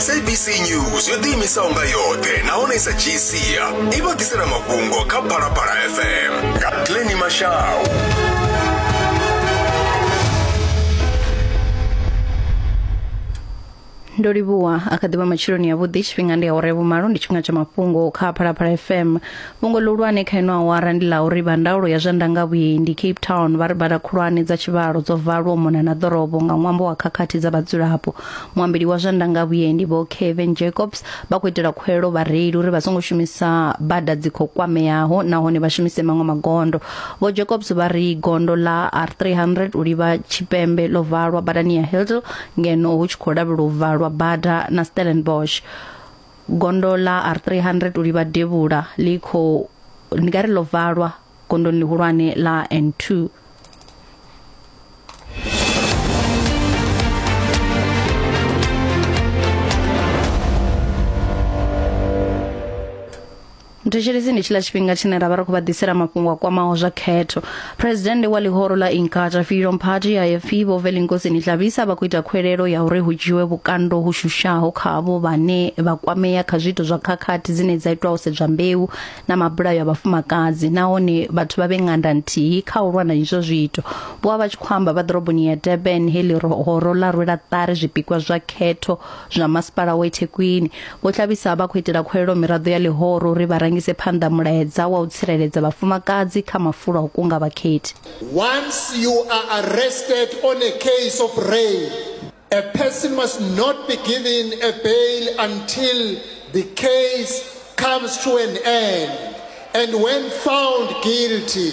sabc news yo ḓiimisaho nga yoṱhe nahone sa gcia i vha ḓisela mafhungo kha phalaphala fm nga pleni mashau ndo livhuwa a kha ḓivha matshiloni yavhuḓi tshifhinga ndi awara ya vhumalo ndi tshifhinga tsha mafhungo kha phalaphala fm Fhungo ḽihulwane kha ino awara ndi ḽa uri vha ndaulo ya zwa ndangavhuendi Cape Town vha ri bada khulwane dza tshivhalo dzo valwa u mona na ḓorobo nga ṅwambo wa khakhathi dza vhadzulapo. Muambeli wa zwa ndangavhuendi Vho Kevin Jacobs vha khou itela khuwelelo vhareili uri vha songo shumisa bada dzi khou kwameaho nahone vha shumise maṅwe magondo. Vho Jacobs vha ri gondo ḽa R300 u livha tshipembe ḽo valwa badani ya Hilldale ngeno hu tshi khou lavhelelwa u valwa bada na Stellenbosch. gondo ḽa R300 u livha devhula ḽi khou ndi nga ri ḽo valwa gondoni ḽihulwane ḽa N2 Thank you muthetshelesi ndi tshiḽa tshifhinga tshine ra vha ri khou vha ḓisela mafhungo a kwamaho zwa khetho phuresidennde wa ḽihoro ḽa inkatha freedom party ifp vho velinkosini hlabisa vha khou ita khuelelo ya uri hu dzhiwe vhukando hu shushaho kha avho vhane vha kwamea kha zwiito zwa khakhathi dzine dza itwa u sedzwa mbeu na mabulayo a vhafumakadzi nahone vhathu vha vhe nganda nthihi kha u lwa na izwo zwiito vho vha vha tshi khou amba vha ḓoroboni ya durban he ḽihoro ḽa rwela ṱari zwipikwa zwa khetho zwa masipala wa Thekwini vho Tlabisa vha khou itela khuwelelo miraḓo ya ḽihoro uri vha rangise phanḓa mulaedza wa u tsireledza vhafumakadzi kha mafulo a u kunga vhakhethi. Once you are arrested on a case of rape, a person must not be given a bail until the case comes to an end and when found guilty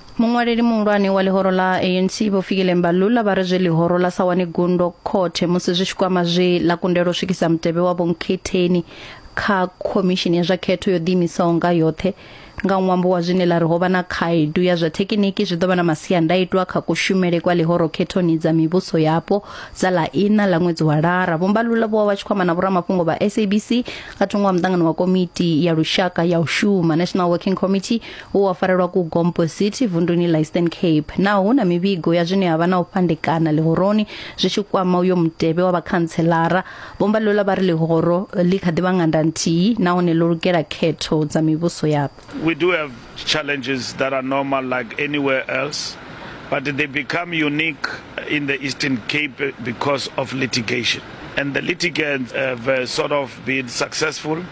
Muṅwaleli muhulwane wa ḽihoro ḽa ANC Vho Fikile Mbalula vha ri zwe ḽihoro ḽa sa wane gundo khothe musi zwi tshi kwama zwe ḽa kundelwa u swikisa mutevhe wa vhonkhetheni kha khomishini ya zwa khetho yo ḓiimisaho nga yoṱhe nga ṅwambo wa zwine ḽa ri ho vha na khaedu ya zwa thekiniki zwi ḓo vha na masiandaitwa kha kushumele kwa ḽihoro khethoni dza mivhuso yapo dza ḽa iṋa ḽa ṅwedzi wa lara Vho Mbalula vho vha vha tshi khou amba na vhoramafhungo vha SABC nga thungo ha muṱangano wa komiti ya lushaka ya u shuma National Working Committee u wa farelwa ku gompo city vunduni la eastern cape naho hu na mivhigo ya zwine ha vha na u fhandekana ḽihoroni zwi tshi kwama uyo mutevhe wa vhakhantselara vhomba lola vha ri ḽihoro ḽi kha ḓi vha nganda nthihi nahone ḽo lugela khetho dza mivhuso yapo we do have challenges that are normal like anywhere else but they become unique in the eastern cape because of litigation and the litigants have uh, sort of been successful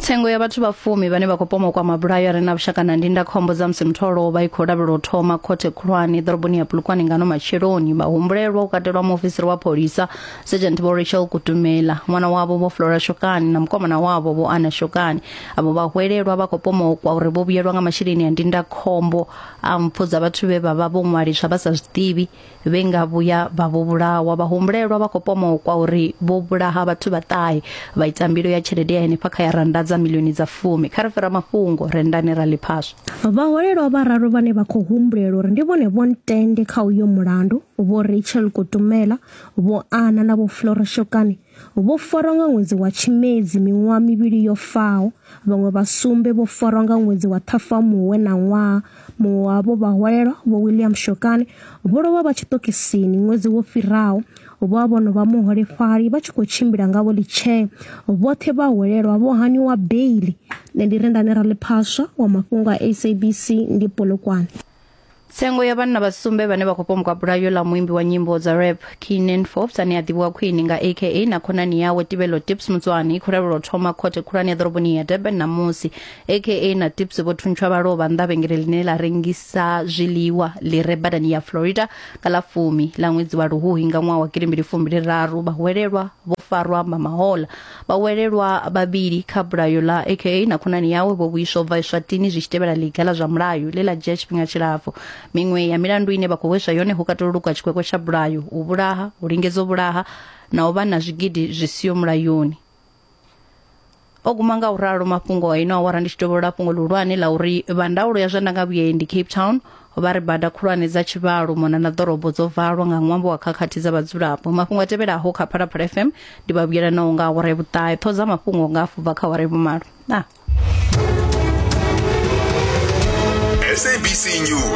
Tsengo ya vhathu vha fumi vhane vha khou pomokwa mabulayo a re na vhushaka na ndindakhombo dza musi muthu o lovha i khou lavhelwa u thoma khothe khulwane ḓoroboni ya Polokwane ngano matsheloni vhahumbulelwa u katelwa muofisiri wa pholisa Sergeant Vho Rachel Kutumela ṅwana wavho Vho Flora Shokani na mukomana wavho Vho Ana Shokani avho vhahwelelwa vha khou pomokwa uri vho vhuyelwa nga masheleni a ndindakhombo a mpfu dza vhathu vhe vha vha vho ṅwaliswa vha sa zwiḓivhi vhe nga vhuya vha vho vhulawa vhahumbulelwa vha khou pomokwa uri vho vhulaha vhathu vha ṱahe vha ita mbilo ya tshelede ya henefha kha ya randa dza milioni dza fumi kha ri fhira mafhungo rendani ra ḽiphaswa vhaholelwa vhararu vhane vha khou humbulela uri ndi vhone vho ntende kha uyo mulandu vho rachel kutumela vho ana na vho flora shokani Vho farwa nga ṅwedzi wa Tshimedzi miṅwaha mivhili yo faho, vhaṅwe vha sumbe vho farwa nga ṅwedzi wa Ṱhafamuhwe na ṅwaha. Muṅwe wavho vhahwalelwa Vho William Shokane vho lovha vha tshiṱokisini ṅwedzi wo fhiraho. Vho a vhono vha muholefhali vha tshi khou tshimbila nga vhoḽitshee. Vhoṱhe vhahwalelwa vho haniwa beiḽi. Nṋe ndi Rendani Raliphaswa wa mafhungo a SABC ngei Polokwane. tsengo ya vhanna vha sumbe vhane vha khou pomboka bulayo ḽa muimbi wa nyimbo dza rap keenan forbes ane a ḓivhiwa khwini nga aka na khonani yawe tibelo tips mutswani i khou lavhelwa u thoma khothe khulwane ya ḓoroboni ya durban ṋamusi aka na tips vho thuntsha vha lovha nnḓa vhengele ḽine ḽa rengisa zwiḽiwa ḽi re badani ya florida nga ḽa fumi ḽa ṅwedzi wa luhuhi nga ṅwaha wa gidi mbili fumbili raru vhahuwelelwa vho farwa mamahola Vhawelelwa vhavhili kha bulayo ḽa aka na khonani yawe vho vhuiswa u bva Eswatini zwi tshi tevhela ḽiga ḽa zwa mulayo ḽe ḽa dzhia tshifhinga tshilapfu. Miṅwe ya milandu ine vha khou hweswa yone hu katela u lukwa tshikwekwe tsha bulayo, u vhulaha, u lingedza u vhulaha na u vha na zwigidi zwi siho mulayoni. O guma nga u ralo mafhungo a ino awara ndi tshi dovholola fhungo ḽihulwane ḽa uri vha ndaulo ya zwa ndangavhuendi Cape Town vha ri bada khulwane dza tshivhalo mona na ḓorobo dzo valwa nga ṅwambo wa khakhathi dza vhadzulapo mafhungo a tevhelaho kha phalaphala fm ndi vha vhuyelanaho nga awara ya vhuṱahe ṱho dza mafhungo nga afubva kha awara ya vhumalo na sabc news